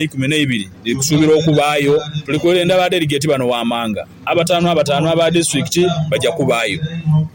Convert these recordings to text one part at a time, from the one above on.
eikumi n'eibiri dhiri kusuubirwa okubaayo. Tuli kwelenda aba delegate bano wammanga abataanu abataanu aba disitulikiti baja kubaayo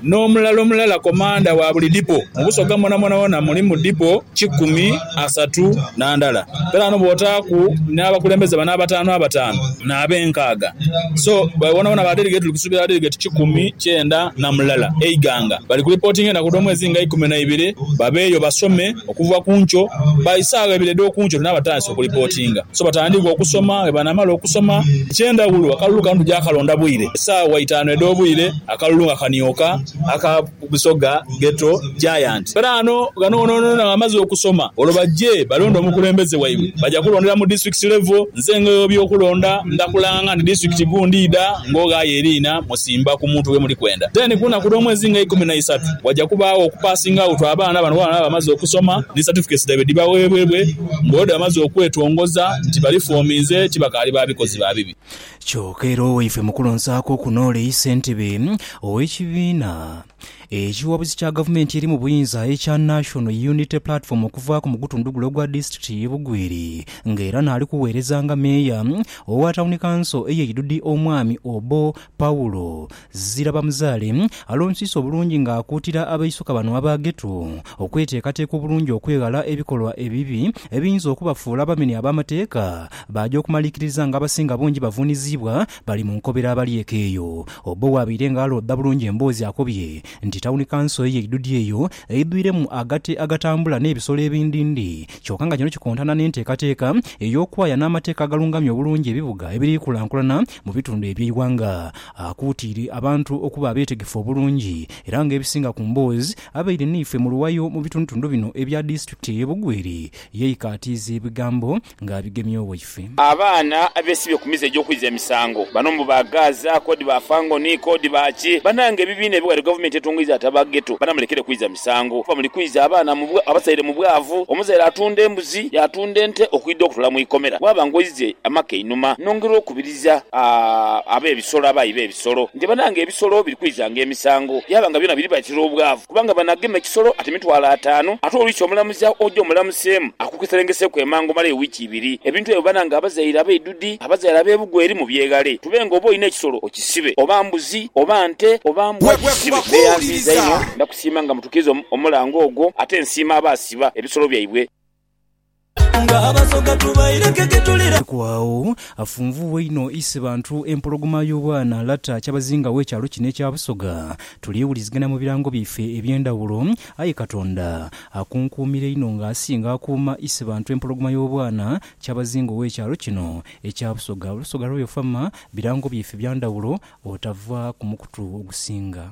n'omulala omulala komanda wa buli dipo. Mu Busoga mwonamwona wona mulimu dipo kikumi asatu na ndala. Kale ghano bw'otaaku n'abakulembeze bano abataanu abataanu n'ab'enkaaga so wonawona ba delegate tuli kusuubira ba delegate kikumi kyenda na mulala e Iganga. Bali ku lipootinga enaku dh'omwezi nga eikumi n'eibiri babeeyo basome. Okuva ku nkyo, ba isaagho ebiro edh'oku nkyo tunabatandisa okulipootinga. So batandika okusoma. Bwe banamala okusoma, eky'endhawulo, akalulu kano tuja kalonda bwire, esaawa itaanu edh'obwire, akalulu nga kanioka, aka Busoga Ghetto Giants. Kale ano, ghano wonawona nga bamaze okusoma, olwo baje balonde omukulembeze waibwe. Baja kulondera mu district level. Nze ng'oyo w'ebyokulonda, nda kulanga nti district gundi idha ng'oghayo eriina. Simba ku muntu ghe muli kwenda. Then ku lunaku lw'omwezi nga eikumi na isatu waja kubaagho oku passing out abaana abano bwebaba nga bamaze okusoma ni certificates dhaibwe dhibaweebwebwe nga olwo dhebamaze okwetongoza nti bali foominze ti bakaali ba bikozi ba bibi. Kyoka era Owaifemukulu Nsaako okunool'eisa entebe ow'ekibiina. Ekiwabuzi kya gavumenti eri mu buyinza ekya National Unity Platform okuvaaku mu gutundu gule ogwa disitulikiti ye Bugweri nga era naali kugheereza nga meeya owa tawuni kanso eye Idudi Omwami Obo Paul Zirabamuzaale alonsiisa obulungi nga akuutira abaisuka bano aba Ghetto okweteekateeka obulungi okweghala ebikolwa ebibi ebiyinza okubafuula abamenyi ab'amateeka baaja okumalikiriza nga abasinga bungi bavuuniziibwa Bali mu nkobera abalyeke eyo. Obbo bw'abaire nga alooda bulungi emboozi akobye nti tawuni kanso eyo eidhudhu eyo eidhwiremu agate agatambula n'ebisolo ebindindi kyoka nga kino kikontana n'enteekateeka ey'okwaya n'amateeka agalungamya obulungi ebibuga ebiri kulankulana mu bitundu eby'eighanga. Akuutiire abantu okuba abeetegefu obulungi era nga ebisinga ku mboozi abaire n'eife mu luwayo mu bitundutundu bino ebya disitulikiti eye Bugweri yeikaatiiza ebigambo nga abigemya owaife. Abaana abesibye ku mize egy'okwidha emisango, bano mbu ba Gaaza, k'odi ba Fangoni, k'odi ba ki? Banange ebibiina ebighale gavumenti etungaidha ati aba Ghetto bana mulekere kwidha misango kuba muli kwidha abaana mu abasaire mu bwavu. Omuzaire atunda embuzi, yaatunda ente okwidha okutola mu ikomera. Waaba ng'oidhie amaka einhuma, nongerwa okubiriza ab'ebisolo abaayi be. ebisolo, nti banange ebisolo biri kwizanga emisango, yaaba nga byona biri batira obwavu, kubanga banagema ekisolo ate mitwalo ataanu, ate olwikya omulamuzi agho oje omulamuseemu akukeserengeseeku emangu omale ewiiki ibiri. Ebintu ebyo banange abazaire abaidhudhi, abazaire ab'ebugo eri mubyeghale, tube nga oba olina ekisolo okisibe, oba mbuzi, oba nte, oba mbwa gisibe. Neyanziiza inho, ndakusiima nga mutukiriza omulango ogwo, ate nsiima abaasiba ebisolo byaibwe. Ku agho, afunvughe inho ise bantu empologoma y'obwana Lata kyabazinga w'ekyalo kino ekya Busoga. Tulyewulizigana mu birango byaife eby'endhawulo, aye Katonda akunkuumira inho nga asinga akuuma ise bantu empologoma y'obwana kyabazinga ow'ekyalo kino ekya Busoga. Olusoga lw'oyo Farmer birango byaife bya ndhawulo otava ku mukutu ogusinga.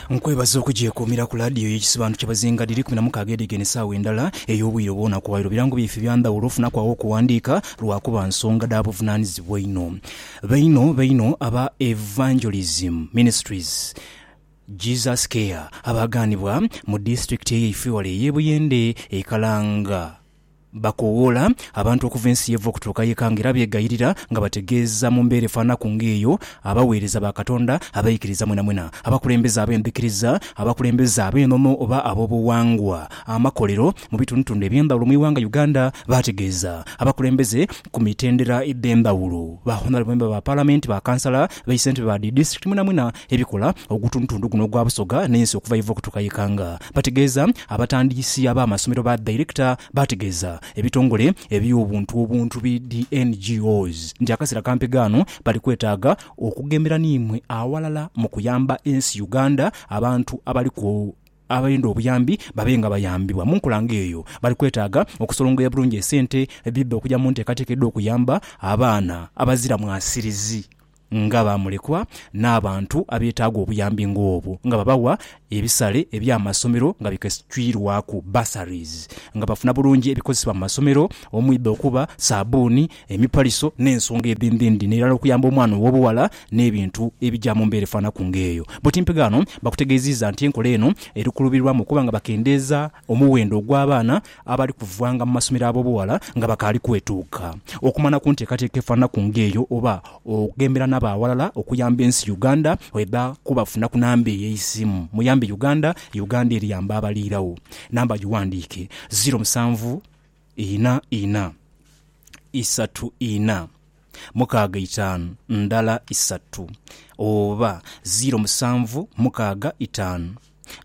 Nkwebaza okugyekuumira ku laadiyo ye Ekisobanuro ky'Abazinga dhiri ikumi na mukaaga edhigenda esaawa endhala ey'obwire obwona ku waire birango byaife bya ndhawulo ofunaku agho okuwandiika lwakuba nsonga dha buvunanizibwa inho baino baino aba Evangelism Ministries Jesus Care abaaganibwa mu disiturikiti eyaife wale ey'e Buyende e Kalanga. Bakoowoola abantu okuva ensi y'eva okutuuka y'eka nga era beegayirira nga bategeeza mu mbeera efaanaku ng'eyo abaweereza ba Katonda abaikiriza mwenamwena, abakulembeze ab'endhikiriza, abakulembeze ab'enono oba ab'obughangwa amakolero mu bitundutundu eby'endhawulo mu ighanga Uganda, baategeeza abakulembeze ku mitendera edh'endhawulo, ba Honorable Member ba Palamenti, ba Kansala, be Ssentebe ba dhi Disitulikiti mwenamwena ebikola ogutundutundu guno ogwa Busoga n'ensi okuva y'eva okutuuka y'eka nga Bategeeza abatandiisi ab'amasomero ba Director baategeeza ebitongole eby'obuntu obuntu bi dhi NGOs nti akaseera kampi ghano bali kwetaaga okughembera n'imwe awalala mu kuyamba ensi Uganda abantu abaliku abenda obuyambi babe nga bayambibwa mu nkola ng'eyo bali kwetaaga okusolongoya bulungi esente edhidha okugya mu nteekateeka edh'okuyamba abaana abazira mwasirizi. nga baamulekwa n'abantu abeetaaga obuyambi ng'obwo, nga babawa ebisale eby'amasomero nga bikesitwirwaku, bursaries, nga bafuna bulungi ebikozesebwa mu masomero omwidha okuba saabuuni, emipaliso n'ensonga edhindhindhi n'erala okuyamba omwana ow'obughala n'ebintu ebija mu mbeera efaanaku ng'eyo. Butimpe ghano bakutegeeziiza nti enkola eno eri kulubirwamu okuba nga bakendeeza omuwendo ogw'abaana abali kuvanga mu masomero ab'obughala nga bakaali kwetuuka okumana ku nteekateeka efaananaku ng'eyo oba okughembera n'abaawalala okuyamba ensi Uganda bweba kubafuna ku namba eyo ey'eisimu Muyambe Uganda, Uganda eri yamba abali iragho. Namba giwandiike, ziro musanvu ina ina isatu ina. mukaaga itaanu ndala isatu, oba ziiro musanvu mukaaga itaanu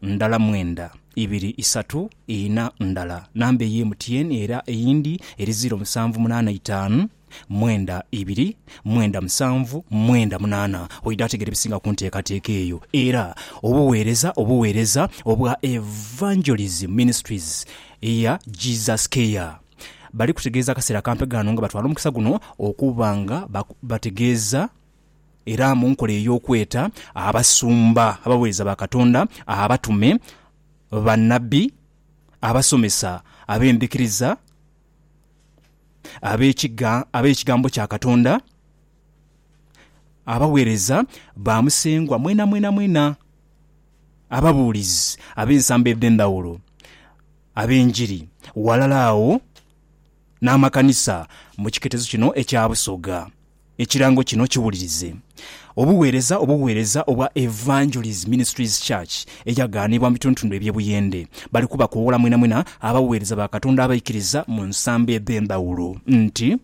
ndala mwenda, ibiri isatu ina ndala namba ey'emutyeeni, era eyindi eri ziiro musanvu munaana itaanu mwenda, ibiri mwenda musanvu mwenda munaana. Oidha ategera ebisinga ku nteekateeka eyo. Era obuweereza obuweereza obwa Evangelism Ministries eya Jesus Care. bali kutegeeza akaseera akampe ghano nga batwala omukisa guno okuba nga bategeeza era mu nkola ey'okweta abasumba, abaweereza ba Katonda, abatume, bannabbi, abasomesa ab'endhikiriza, ab'ekigambo kya Katonda, abaweereza ba Musengwa mwenamwenamwena, ababuulizi ab'ensambo edh'endhawulo. ab'enjiri ghalala agho n'amakanisa mu kiketezo kino ekya Busoga. Ekirango kino kiwulirize. Obuweereza obuweereza obwa Evangelies Ministries Church eyagaanibwa mu bitundutundu eby'e Buyende. Bali kubakoowola mwenamwena abaweereza ba Katonda abaikiriza mu nsambo edh'endhawulo nti.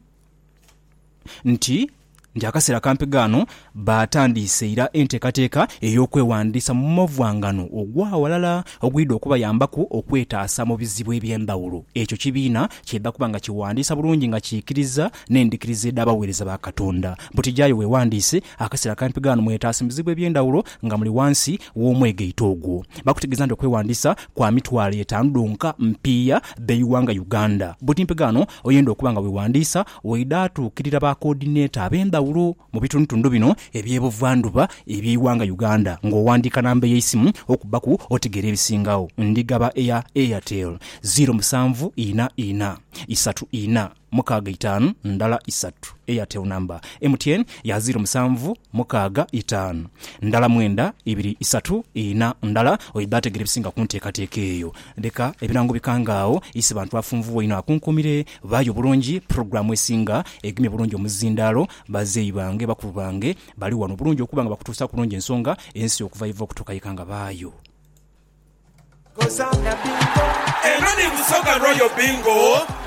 nti nti akaseera kampi ghano baatandiise ira enteekateeka ey'okweghandiisa mu mavwanghano ogw'aghalala ogwidha okubayambaku okwetaasa mu bizibu eby'endhaghulo ekyo kibiina ky'eidha kuba nga kighandiisa bulungi nga kiikiriza n'endhikiriza edh'abaweereza ba Katonda. Butijaayo weeghandiise akaseera kampi ghano mwetaase mu bizibu eby'endhaghulo nga muli ghansi w'omwegaito ogwo. Bakutegeeza nti okweghandiisa kwa mitwalo etaanu dhonka mpiiya b'eighanga Uganda. Buti mpi ghano Oyenda okuba nga weewandiisa waidha atuukirira ba koodineta ab'endhawulo mu bitundutundu bino eby'e Buvandhuba eby'eighanga Uganda ng'owandiika namba ey'eisimu okubbaku otegeera ebisingagho. Ndigaba eya Airtel, ziiro musanvu ina ina, isatu ina, mukaaga itaanu, ndala isatu. Airtel namba. MTN ya ziiro musanvu, mukaaga itaanu, ndala mwenda, ibiri isatu ina, ndala. Oidha ategeera ebisinga ku nteekateeka eyo. Leka ebirango bikange agho. Ise bantu afunvubwa inho akunkumire. Baayo bulungi pulogulaamu esinga egemye bulungi omuzindaalo. Bazeeyi bange, bakulu bange bali wano bulungi okuba nga bakutuusa kulungi ensonga ensi okuva yeva okutuuka yeka nga baayo. Eno ni Busoga Royal Bingo.